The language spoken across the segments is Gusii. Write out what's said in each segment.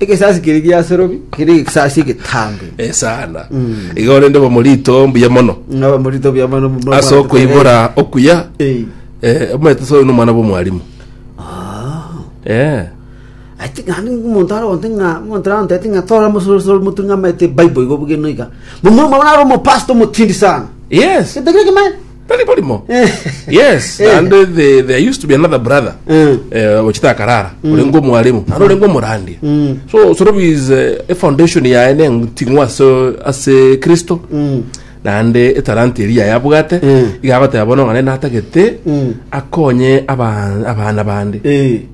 Egesaasi keria gia Serobi kere egesaasi egetambe. Eh, sana igo rende bomorito mbuya mono Ngaba morito bia mano mano. ase okoibora okuya Eh. eh, omanyete soyo nomwana bw'omwalimu eh Ati ngani umuntu ara onte nga umuntu ara onte ati nga tora musoro soro mutu nga mete Bible igo bugeno iga. Mumu mwana ara omo pastor mutindi sana. yes Kitegere kimani. Tari barimo. Yes, naende the- there used to be another brother. Mm. Eh, ochita akarara. Orengo omwalimu. Naende orengo omorandia. Mm. So, sorobi is eh, a foundation yaye nenting'wa ase ase Kristo. Mm. naende etalanta eria yabwate Mm. igagoteba bono ng'a nene natagete Mm. akonye aba- abana bande Eh.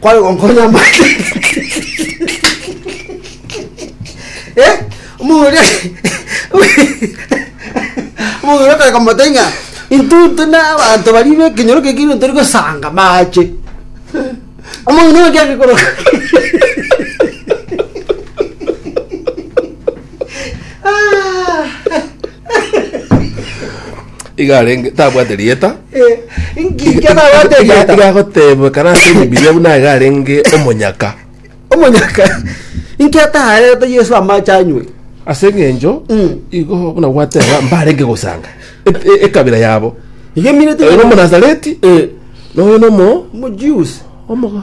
Kware gonkonya amate. Eh, omong'ina oria omong'ina oria akareka mote ng'a intutu na abanto baria be ekenyoro keke igo tori gosanga mache. Omong'ina oria agekoroka. Ah. Iga arenge tabwate rieta. Inki kenabwate Iga- rieta? iga agotebekana ase ebibiria buna iga arenge omonyaka Omonyaka. Inki ataarete Yesu amache anywe? ase eng'encho Mm. igo buna gwateba mbarenge gosanga e- e- ekabira yabo Igemineti oyo nomonazareti na oyo nomo Omojuice. omogo